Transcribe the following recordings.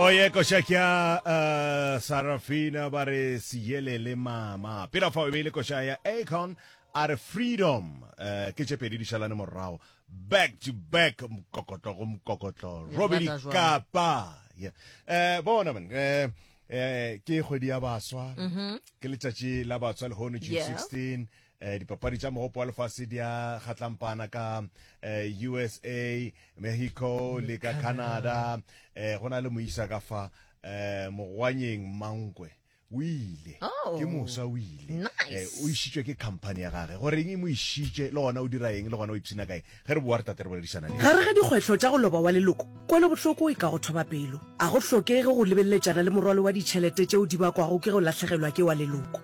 Oye košakya uh, Sarafina ba re siyelele mama pela fa o beile koša ya Akon a re freedom uh, ke tše pedi di šalane morago back to back mokokotlo go mokokotlo robedi kapa yeah. uh, bona man uh, uh, ke kgwedi ya baswa mm -hmm. ke letšatši la batswa lehono june yes. 16 Eh, dipapadi tša mogopo wa lefase di a kgatlampana ka eh, usa mexico le ka canada eh, go na le moisa ka fa eh, mogwanyeng mankwe o ile Oh. ke mosa o ile Nice. Eh, o išitšwe ke company ya gage goreng e mo išitše le gona o dira eng le gona o ipshina kae ge re boa re tate re boledisana le gare ga dikgwetlho tša go loba wa leloko kwelobohloko e ka go thoba pelo a go hlokege go lebeleletšana le morwalo wa ditšhelete tšeo di bakwago ke go lahlegelwa ke wa leloko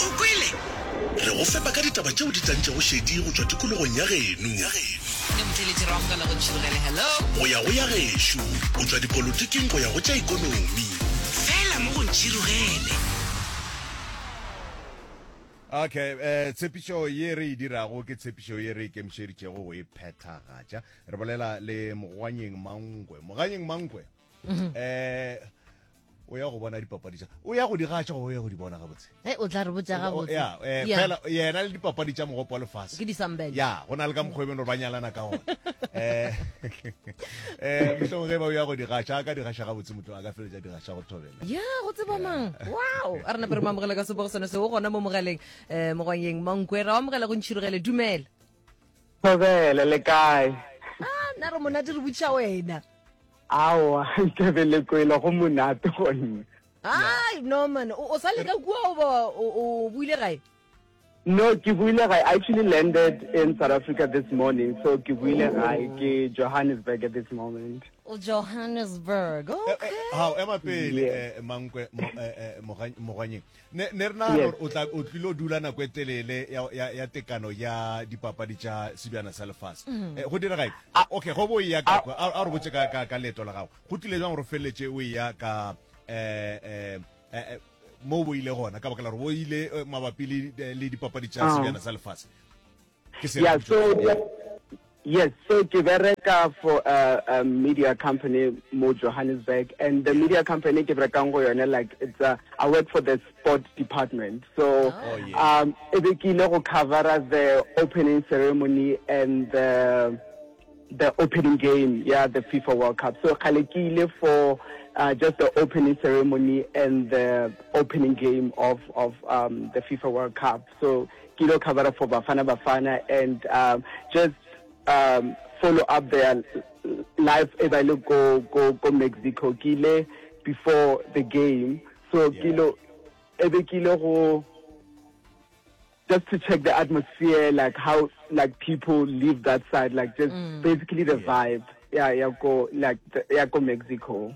o kwele re go fepa ka ditaba tšeo di tlantšego šedi go tšwa tikologong ya geno go ya go ya gešo go tšwa dipolotiking go ya go tša ikonomi fela mo go ntšhirogele okay eh tshepišo ye re e dirago ke tshepišo ye re ikemišeditšego go e phethagatša re bolela le mogwanyeng mangwe moganyeng mangwe um o ya go bona dipapadi tsa o ya go di gatša o ya go di bona gabotse hey, o tla re botsa gabotse ya eh, fela yena le dipapadi tsa mogopo wa lefase ke disambele ya go na le ka mokgwa ebeno ba nyalana ka gona eh eh mohlong ge ba o ya go di gatša ka di gatša gabotse motho a ka feletsa di gatša go thobela ya go tseba mang wow a rena pere mamogela ka sebogo sone se o gona mo mogaleng um eh, mogwang yeng mankwera wa mogela go ntšhirogele dumela Thobele le kae? Ah, nna re monate re botšiša wena. Aowa, Thobele kwele go monate go nna. Ai, no man, o sa leka kua o ba o buile gae? No, ke buile gae. I actually landed in South Africa this morning, so ke buile gae oh. ke Johannesburg at this moment. O Johannesburg. Eh, eh, okay. How ema pele eh, mankwe mogwanyeng. ne ne re nagana gore o tla o tlile o dula nako e telele ya ya ya tekano ya dipapadi tša sebjana sa lefase mm. eh, go direga okay go bo ya ka a re botse ka ka ka leto la gago go tlile jang gore feletse o ya ka eh, eh eh mo bo ile gona ka baka la gore bo ile eh, mabapi le le dipapadi tša ah. sebjana sa lefase yeah so yes so ke bereka for a, a media company mo johannesburg and the media company ke berekang go yone like it's a, i work for the sport department so oh, yeah. um e be ke ile go covera the opening ceremony and the the opening game yeah the fifa world cup so kgale ke ile for uh, just the opening ceremony and the opening game of of um, the fifa world cup So ke ilo covera for Bafana Bafana and um, just um, follow up their live e ba le ko, ko, ko Mexico. Ke ile before the game. So yeah. ke ilo, ebe ke ile go, just to check the atmosphere, like how like people live that side, like just mm. basically the yeah. vibe. Yeah, yeah, go like yeah, go Mexico.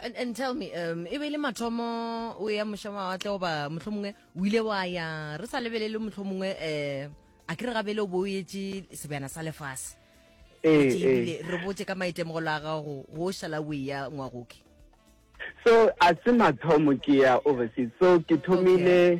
And, and tell me, um, e be le mathomo o ya moša mawatle goba motlho mongwe o ile wa ya re sa lebelele motlho mongwe um a ke re gabele o bo o etse sebjana sa lefase Ee, Etse ee. ebile re botse ka maitemogelo a gago go o šala o eya ngwagoke so a se mathomo ke ya overseas so ke thomile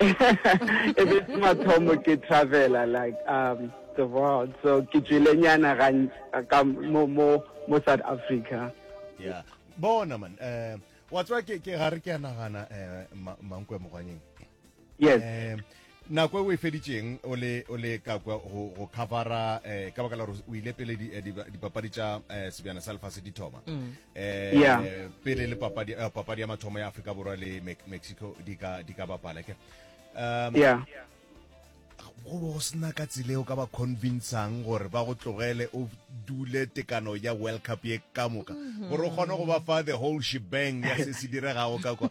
e be se mathomo ke travela like um the world so ke tswile nyana ka mo mo mo south africa yeah bona man eh wa tswa ke ke gare ke nagana eh mankwe mogwanyeng yes eh nako e o e feditseng o le o le ka kwa go go covera eh ka baka la gore o ile pele eh, dipapadi tša eh, sebjana sa lefase di thoma mm. eh yeah. pele le papadi uh, papadi ya mathomo ya Afrika Borwa le Me Mexico di ka di ka bapala ke um yeah go bo sna ka tsile o ka ba convincang gore ba go tlogele o dule tekano ya world cup ye ka moka mhm. gore o kgone go ba fa the whole shebang ya se se diregago ka kwa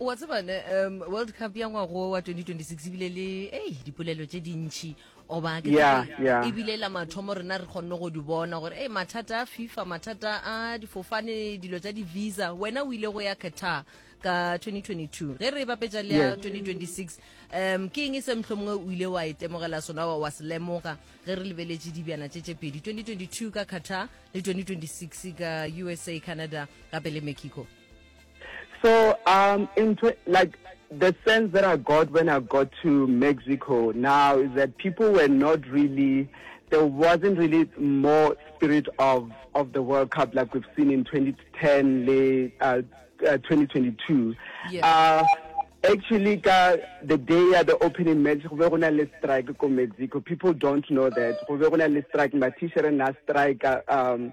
wa tseba ne um world cup ya ngwago wa 2026 ebile le ei dipolelo tše dintšhi oba ke ebile la mathomo rena re kgonne go di bona gore ei mathata a fifa mathata a difofane dilo tsa di-visa wena o ile go ya qatar ka 2022 ge re e bapetsa le ya 2026 um ke eng e se motlho mongwe o ile wa e temogela sona wa se lemoga ge re lebeletše dibjana tše tše pedi 2022 ka qatar le 2026 ka usa canada gape le mexico So um in like the sense that I got when I got to Mexico now is that people were not really there wasn't really more spirit of of the World Cup like we've seen in 2010 late uh, uh, 2022. Yes. Uh, actually ka the day ya the opening match go be go na le strike ko mexico people don't know that go be go na le strike matishere na strike um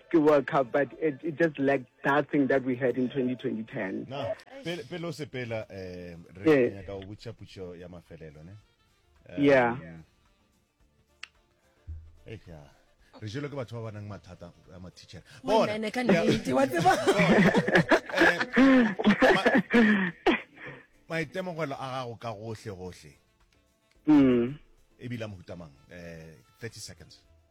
ke World Cup but it, it just lacked that thing that we had in 2010. Na pele pele o sepela eh re yeah. nyaka go butša putšo ya mafelelo ne. Um, yeah. Eh yeah. re jelo ke batho ba ba nang mathata a mathichera bonaene ka nnete wa tseba eh, maitemogelo a gago ka gohle gohle mm. ebile a mohutamang um eh, 30 seconds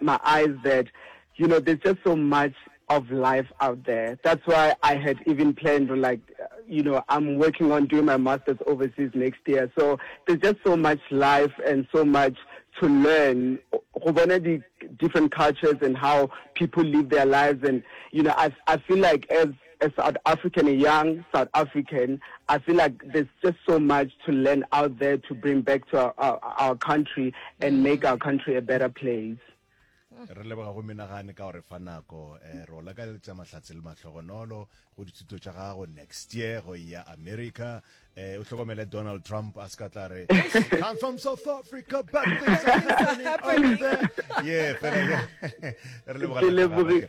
my eyes that you know there's just so much of life out there that's why I had even planned to like you know I'm working on doing my masters overseas next year so there's just so much life and so much to learn go bona di different cultures and how people live their lives and you know I I feel like as A South African, a young South African, I feel like there's just so much to learn out there to bring back to our, our, our country and mm. make our country a better place. re leboga go menagane ka gore fa nako um eh, re o lakaletsa mahlatse le matlhogonolo go dithuto tša gago next year go ya america um o tlhokomele donald trump a se ka tla re come from south africa but things are happening over there yeah fela re leboga